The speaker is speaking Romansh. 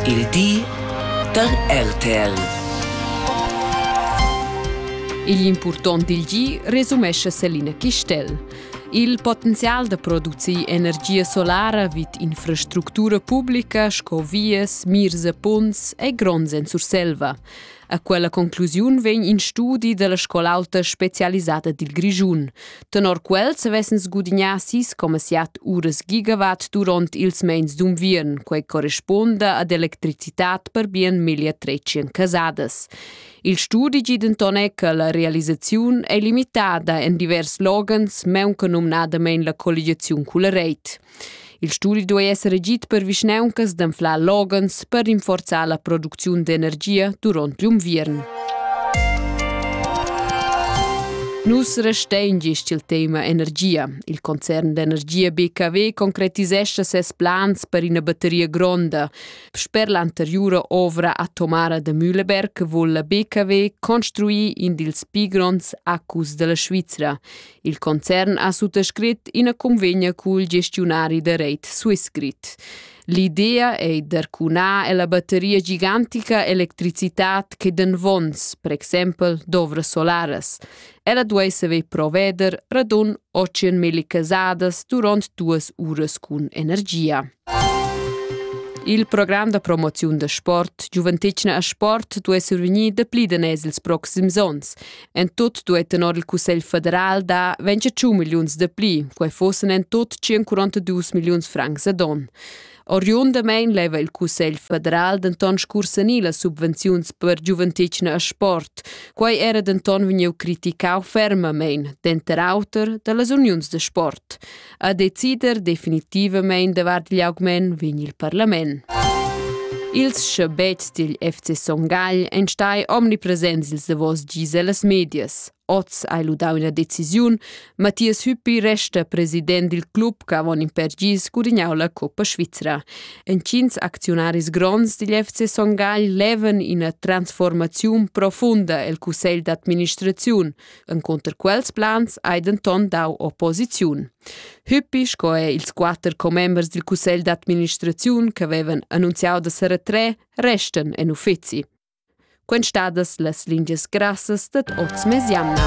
Il di da RTL. Igl impurtont dil gi resumescha Selina Chistel. Il potenzial da producir energia solara vid infrastructura publica sco vias, mirs e punts è gronds en Surselva. A quella conclusiun vegn in studi dalla scol'auta specialisada dil Grischun. Tenor quels vessen sgudignà sis coma siat uras gigawatt durant ils meins d'unviern, quei corresponda ad electricitat per bien miglia trecien casadas. Il studi gi denton è che la realisaziun è limitada en divers loghens, meunca numnadamein la colligiaziun culla reit. Il studi duei esser agid per vischnauncas d'anflar loghens per rinforzar la producziun d'energia duront l'unviern. Nus restein gist il tema energia. Il concern d'energia BKW concretisescha ses plans per ina batteria gronda. Sper l'anteriura ovra atomara da Mühleberg vul la BKW construir in dils pi gronds acus della Svizra. Il concern ha suttascrit ina convegna cul gestiunari da reit Swissgrid. L'idea ei d'arcunar ella batteria gigantica electricitat che den vons, per exempel dovras solaras. Ella duei saver proveder radun 800.000 casadas duront duas uras cun energia. Il program da promoziun da sport Giuventetgna a sport duai survegnir dapli daners ils proxims onns. En tut duei tenor il Cussegl federal da 25 milliuns de pli, quei fossen en tut 142 milliuns francs ad on. Oriundamein leva il Cussegl federal denton scursanir las subvenziuns per giuventetgna e sport. Quei era denton vegniu criticau fermamein, denter auter, dallas uniuns de sport. a decider definitivamain davart gli augment vegn il parlament. Ils schabets dil FC Son Gagl ein stai omnipresents ils davos dis ellas medias. Oz hai ludau ina decisiun. Matthias Hüppi resta president dil club che avon in per gis gudignau la Coppa Svizra. Entgins acziunaris gronds digl FC Son Gagl levan ina transformaziun profunda el cussegl d'administraziun. Encunter quels plans hai denton dau opposiziun. Hüppi sco è ils quatter commembers dil cussegl d'administraziun che vevan annunziau da seretre resten en uffizi. Quenstadas las lingias grassas dad oz mesiamna.